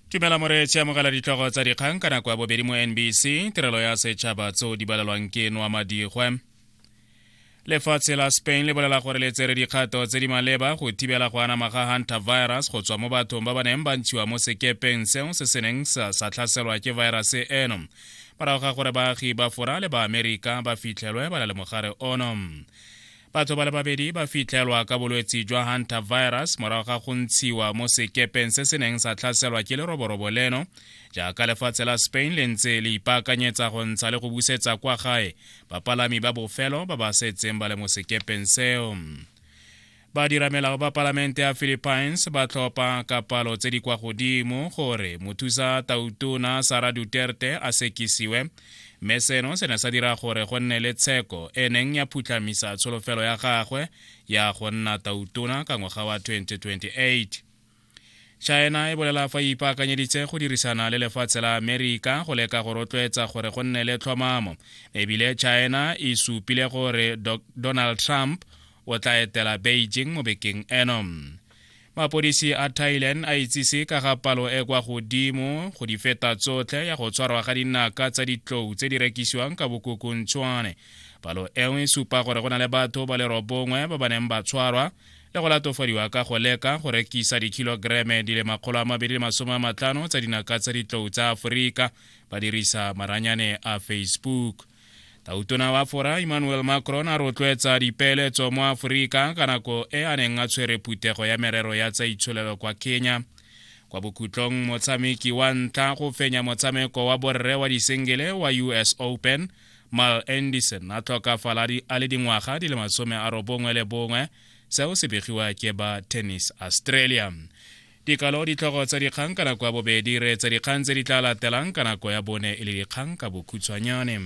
tumela moreetši amogela ditlogo tsa dikgang ka nako ya bobedi mo nbc tirelo ya setšhaba tseo di balelwang ke noa madigwe lefatshe la spain le bolela gore le tsere dikgato tse di maleba go thibela go anama ga hunter virus go tswa mo bathong ba ba neng ba ntshiwa mo sekepeng seo se se neng sa tlhaselwa ke virus eno morago ga gore baagi ba fora le baamerika ba fitlhelwe ba na le mogare ono Batho ba le babedi ba fitlhelwa ka bolwetsi jwa Hunter virus morago ga go ntshiwa mo sekepeng se se neng sa tlhaselwa ke leroborobo leno jaaka lefatshe la Spain le ntse le ipaakanyetsa go ntsha le go busetsa kwa gae bapalami ba bofelo ba ba setseng ba le mo sekepeng seo. Badiramelao ba palamente ya Philippines ba tlhopha ka palo tse di kwa godimo gore mothusa tautona Sara Duterte a sekisiwe mme seno se ne sa dira gore go nne le tsheko e neng ya phutlhamisa tsholofelo ya gagwe ya go nna tautona ka ngwaga wa 2028 china e bolela fa e ipaakanyeditse go dirisana le lefatshe la amerika go leka go rotloetsa gore go nne le tlhomamo ebile china e supile gore donald trump o tla etela beijing mo bekeng eno mapodisi a thailand a itsise ka ga palo e kwa godimo go di feta tsotlhe ya go tshwarwa ga dinaka tsa ditlou tse di rekisiwang ka bokokontshwane palo eo e supa gore go na le batho ba le robongwe ba ba neng ba tshwarwa le go latofadiwa ka go leka go rekisa dikhilogereme di le makgolo a mabedi le masome a matlhano tsa dinaka tsa ditlou tsa aforika ba dirisa maranyane a facebook Tautona wa fora Emmanuel Macron a rotloetsa dipeeletso mo Aforika ka nako e a neng a tshwere phuthego ya merero ya tsa itsholelo kwa Kenya. Kwa bokhutlong motshameki wa ntlha go fenya motshameko wa borre wa disengele wa US Open, Mal Anderson a tlhokafala a le dingwaga di le masome a robongwe le bongwe seo se begiwa ke ba Tennis Australia. Dikalo ditlhogo tsa dikgang ka nako ya bobedi re etsa dikgang tse di tla latelang ka nako ya bone e le dikgang ka bokhutshwanyane.